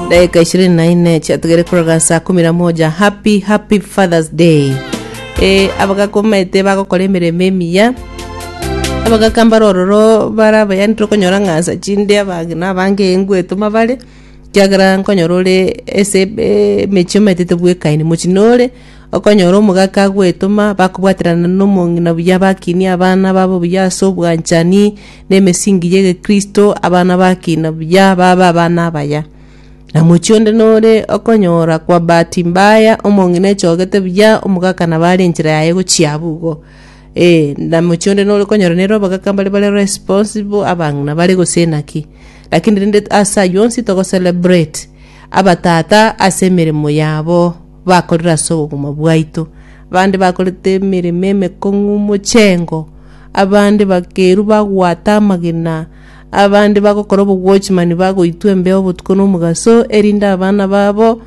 dakika ishirini na ine chiatugere koroga saa kumi na moja happy happy fathers day e, abagakomete bagokora emeremo emiya abagakambara ororo bara abayani tokonyora ng'asa chinde abange na abange engu etoma bare kiagera nkonyora ore ase ebe- emechie omaetete bwekaini mochie nore okonyora omogaka agwetoma bakobwaterana nomong'ina buya bakinie abana babo buya ase obwanchani nemesingi y'egekristo, abana bakina buya babe abana abaya. Na mochie onde nore okonyora kwa bahati mbaya omong'ina echogete buya omogaka nabo are enchera yaye gochia abwo igo. Ee, na mochie onde nore okonyora nere abagaka mbare bare responsible, abang'ina bare gose naki. Lakini rende ase ayio onsi togo celebrate abatata ase emeremo yabo bakorire ase obogima bwaito. Abande bakorete emeremo emekong'u mochengo. Abande bakeirwa bagwata amagena, abande bagokora obogwochi mani bagoitwa embeo obotuko nomogaso, erinde abana babo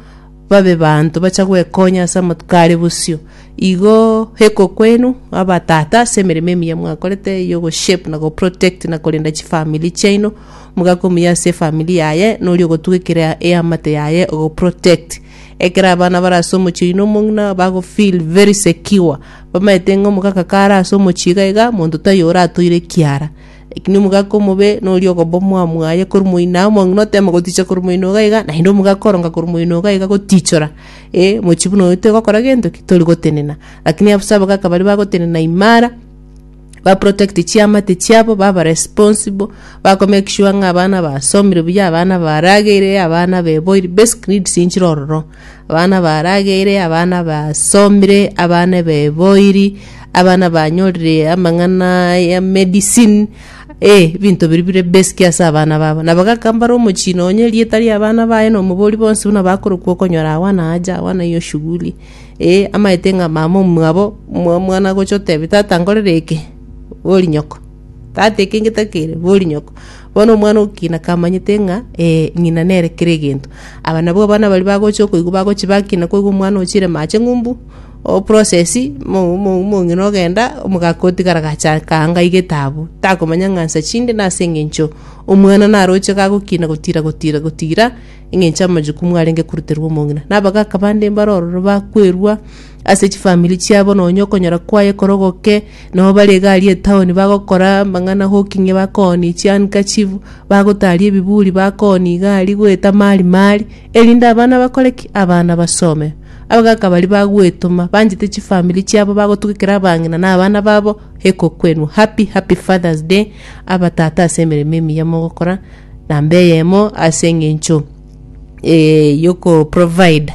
babe banto bacha gwekonya ase amatuko are bosio. Igo heko kwenu abatata ase emeremo emiya mwakorete yo go shape na go protect na korenda chifamiri chiaino, omogaka omuya ase efamiri yaye nori ogotuga ekero eamate yaye ogo protect. Ekero abana bare ase omochie oyio na omong'ina bago feel very secure. Bamaete ng'a omogaka kare ase omochie iga iga monto taiyo oratoire ekiara. Lakini omogaka omobe noria ogoba omwamu aye korwa moino aye omong'ina otema goticha korwa moino iga iga naende omogaka oronga korwa moino iga iga gotichora eh mochie buna oyo tigokora gento ki tori gotenena. Lakini ase abagaka baria bagotenena imara. ba protect chiamate chiabo baba responsible bakomake sure ng'a abana basomire buya abana barageire abana beboiri basic needs inchire ororo abana barageire abana basomire abana beboiri abana banyorire amang'ana ya medicine eh ebinto biria bire basic ase abana babo nabo gaka mbare omochie nonye erieta ria abana baye na omobori bonsi buna bakorokwa okonyora agwo na aja agwo na hiyo shughuli. Ee, amaete ng'a mama omwabo omwana agocha otebi, Tata, nkorere eke, bori nyoko. Tata, eke ngetakeire, bori nyoko. Bono omwana ogokina kamanyete ng'a ee, ng'ina nere kera egento. Aba nabwo abana baria bagocha okoigwa bagochi bakina koigwa omwana ochire mache ng'umbu, o process, mo- mo- mong'ina ogenda, omogaka otigara gacha kaanga iga etaabu. Takomanya ng'a nsa chinde nase eng'encho omwana naroche kagokina gotira gotira gotira. engencho amachuku mwarenge koruterwa omong'ina, na abagaka bande mbare ororo bakwerwa ase chifamiri chiabo, nonya okonyora kwaye korogoke, nabo bare iga aria etaoni bagokora amang'ana hoki ng'a bakooni chihandkerchief, bagotari ebiburi bakooni iga aria goeta mari mari, erinde abana bakore ki? Abana basome. Abagaka baria bagwetoma, banchete chifamiri chiabo bagotugekera abang'ina na abana babo, ekokwenwa. Happy happy fathers day abatata ase emeremo emiya mogokora. namba eyemo ase eng'encho eh, yoko provide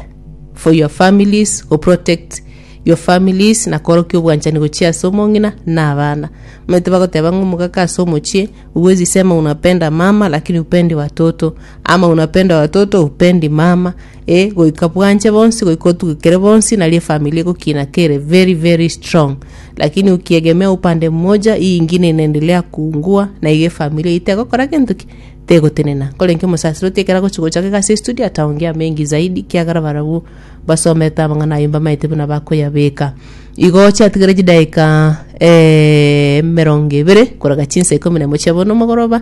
for your families go protect your families na korokia obwanchani gochia ase omong'ina na abana omanyete bagoteba ng'a omogaka ase omochie uwezi sema unapenda mama lakini upendi watoto ama unapenda watoto upendi mama eh goika bwanche bonsi goika otugekere bonsi nari efamiri egokina kere very very strong lakini ukiegemea upande mmoja hii ingine inaendelea kuungua na iga efamiri eyio tegokora gento ki tegotenena nkorenke omosasiroti ekero agochi gocha iga ase estudio ataongea mengi zaidi kiagera barabwo basomete amang'ana ayio mbamaete buna bakoyabeka igo oche atigere chidakika eh emerongo ebere korega chinsa ikomi na emo chia bono mogoroba